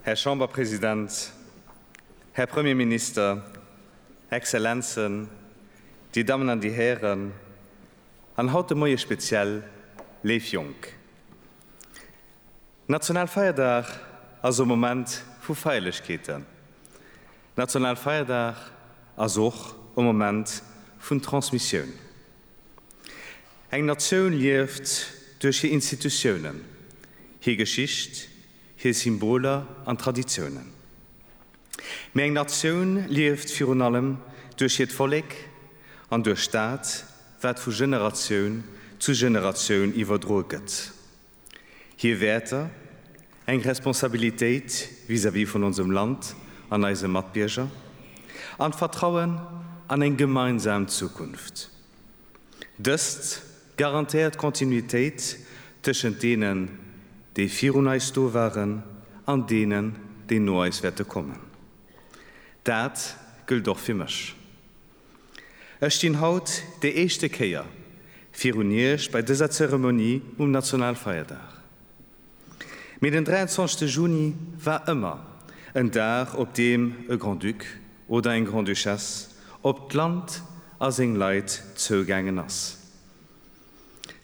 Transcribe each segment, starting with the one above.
Här Chamberpresident, Här Premierminister, Exzellenzen, Dir Dammen an Dir Hären, an haut de Moie speziell léif Jonk. Nationalfeierdag ass e Moment vu Feierlechkeeten. Nationalfeierdag ass och e Moment vun Transmissioun. Eng Natioun lieft duerch hir Institutiounen, hir Geschicht, hir Symboler an Traditiounen. Mee eng Natioun lieft virun allem duerch hiert Vollek an duerch dat, wat vu Generatioun zu Generatioun iwwerdroe gëtt. Hir Wäerter, eng Responsabilitéit vis-à-vis vun onsem Land an eise Matbierger an d'Vertrauen an eng gemeinsam Zukunft, dëst garantéiert Kontinuitéit tëschent deenen, déi virun eis do waren an deenen, déi no eis wäerte kommen. Dat gëllt och fir mech. Ech stinn haut déi éischte Kéier virun Iech bei dëser Zeremonie um Nationalfeierdag. Mee den 23 Juni war ëmmer en Dag, op deem e Grand-Duc oder eng Grand-Duchesse op d'Land a seng Leit zougaangen ass.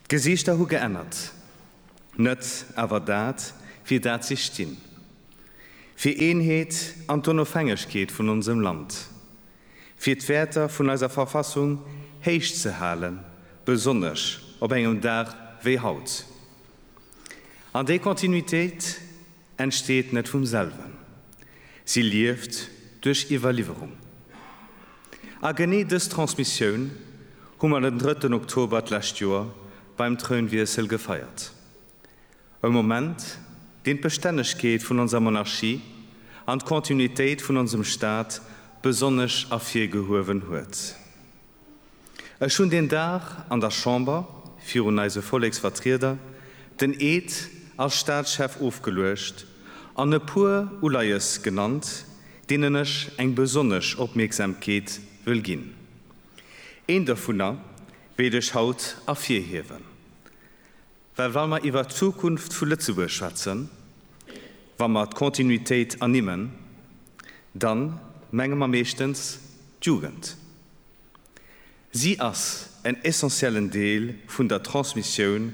D'Gesiichter hu geännert, net awer dat, fir dat si stinn, fir Eenheet an d'Onofhängegkeet vun onsem Land, fir d'Wäerter vun eiser Verfassung héich ze halen, besonnesch op engem Dag wéi haut. An déi Kontinuitéit entsteet net vum selwen, si lieft duerch Iwwerliwwerung. A genee dës Transmissioun hu mer den drëtten Oktober d'lescht Joer beim Trounwiessel gefeiert. E Moment, deen d'Bestännegkeet vun onser Monarchie an d'Kontinuitéit vun onsem Staat besonnesch ervirgehuewen huet. Ech hunn deen Dag an der Chamber virun eise Volleksvertrieder den Eed als Staatschef ofgeluecht an e puer Uleies genannt, deenen ech eng besonnesch Opmierksamkeet wëll ginn. Een dovunner wéilt ech haut ervirhiewen. Well wa mer iwwert d'Zukunft vu Lëtzebuerg schwätzen, wa mer d'Kontinuitéit ernimmen, da menge mer meeschtens d'Jugend. Si ass en essentiellen Deel vun der Transmissioun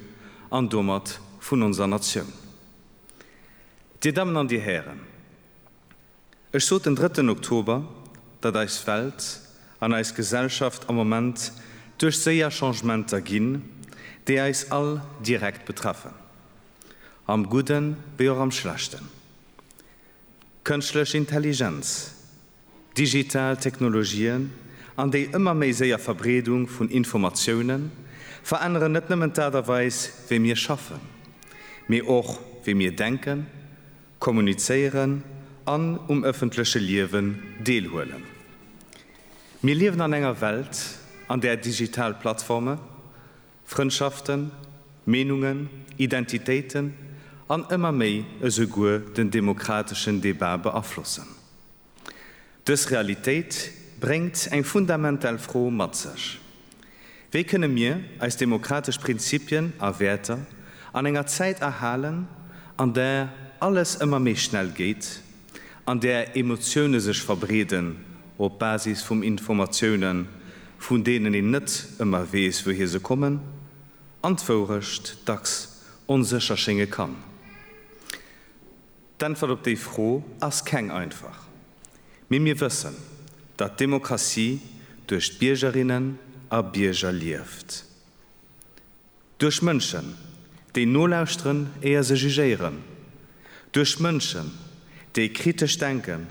an domat vun onser Natioun. Dir Dammen an Dir Hären, Ech sot den drëtten Oktober, datt eis Welt an eis Gesellschaft am Moment duerch séier Changementer ginn, déi eis all direkt betreffen, am Gudde wéi och am Schlechten. Kënschtlech Intelligenz, digital Technologien an déi ëmmer méi séier Verbreedung vun Informatioune veränneren net nëmmen d'Aart a Weis, wéi mir schaffen, mee och wéi mir denken kommunizéieren an um ëffentleche Liewen deelhuelen. Mir liewen an enger Welt, an där digital Plattforme Frëndschaften, Meenungen, Identitéiten an ëmmer méi esouguer den demokrateschen Debat beaflossen. Dës Realitéit bréngt eng fundamental Fro mat sech, Wéi kënne mir eis demokratesch Prinzipien a Wäerter an enger Zäit erhalen, an där alles ëmmer méi schnell geet, an där Emotioune sech verbreeden op Basis vum Informatioune vun deenen een net ëmmer weess wouhir se kommen an d'Wourecht dacks onsécher schénge kann? D'Äntwert op déi Fro ass keng einfach. Mee mir wëssen, datt d'Demokratie duerch d'Biergerinnen a Bierger lieft. Duerch Mënschen, déi nolauschteren, éier se jugéieren. Duerch Mënschen, déi kritesch denken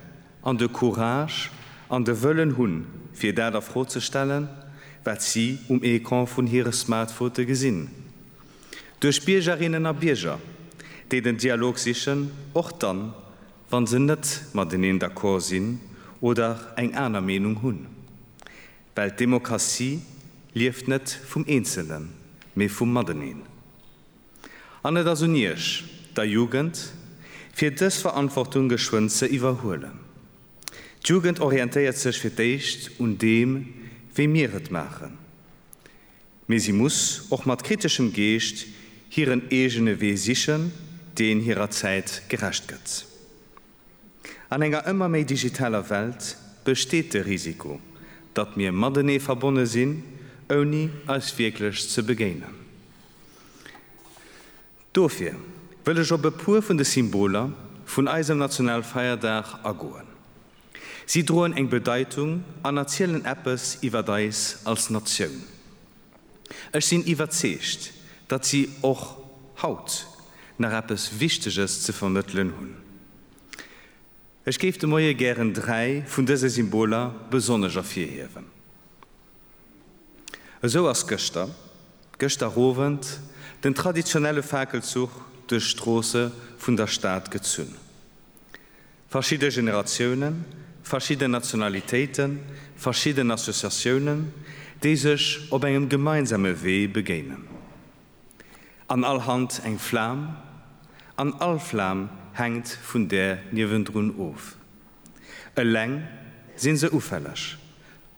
an de Courage an de Wëllen hunn, fir dat a Fro ze stellen, wat si um Ecran vun hire Smartphote gesinn. Duerch Biergerinnen a Bierger, déi den Dialog sichen, och dann, wann se net mateneen d'accord sinn oder eng aner Meenung hunn. Well d'Demokratie lieft net vum Eenzelen, mee vum Mateneen. An et ass un Iech, der Jugend, fir dës Verantwortung geschwënn ze iwwerhuelen. D'Jugend orientéiert sech fir d'éischt un deem, wéi mir et maachen. mee si muss och mat kriteschem Geescht hiren eegene Wee sichen, deen hirer Zäit gerecht gëtt. An enger ëmmer méi digitaler Welt besteet de Risiko, datt mir matenee verbonne sinn, ouni eis wierklech ze begéinen. Dofir wëll ech op e puer vun de Symboler vun eisem Nationalfeierdag agoen. Si droen eng Bedeitung an erzielen eppes iwwer eis als Natioun. Ech sinn iwwerzeegt, datt si och haut nach eppes Wichteges ze vermëttelen hunn. Ech géif de Moie gären dräi vun dëse Symboler besonnesch ervirhiewen. Esou ass gëschter, gëschter Owend, den traditionelle Fakelzuch duerch d'Stroosse vun der Stad gezunn. Verschidde Generatiounen, verschidden Nationalitéiten, verschidden Associatiounen, déi sech op engem gemeinsame Wee begéinen. An all Hand eng Flam, an all Flam hänkt vun där niewendrun of. Eleng si se ufälleg,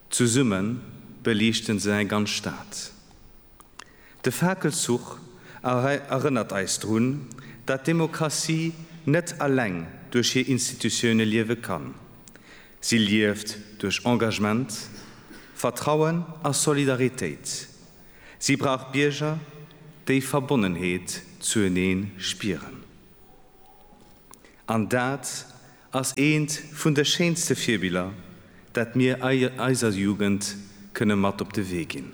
zesumme beliichte se eng ganz Stad. De Fakelzuch erënnert eis drun, dat d'Demokratie net alleng duerch hir Institutioune liewe kann. Si lieft duerch Engagement, Vertrauen a Solidaritéit. Si brauch Bierger, déi Verbonnenheet zuenee spieren. An dat ass eent vun de schéinste Virbiller, dat mir eiser Jugend kënne mat op de Wee ginn.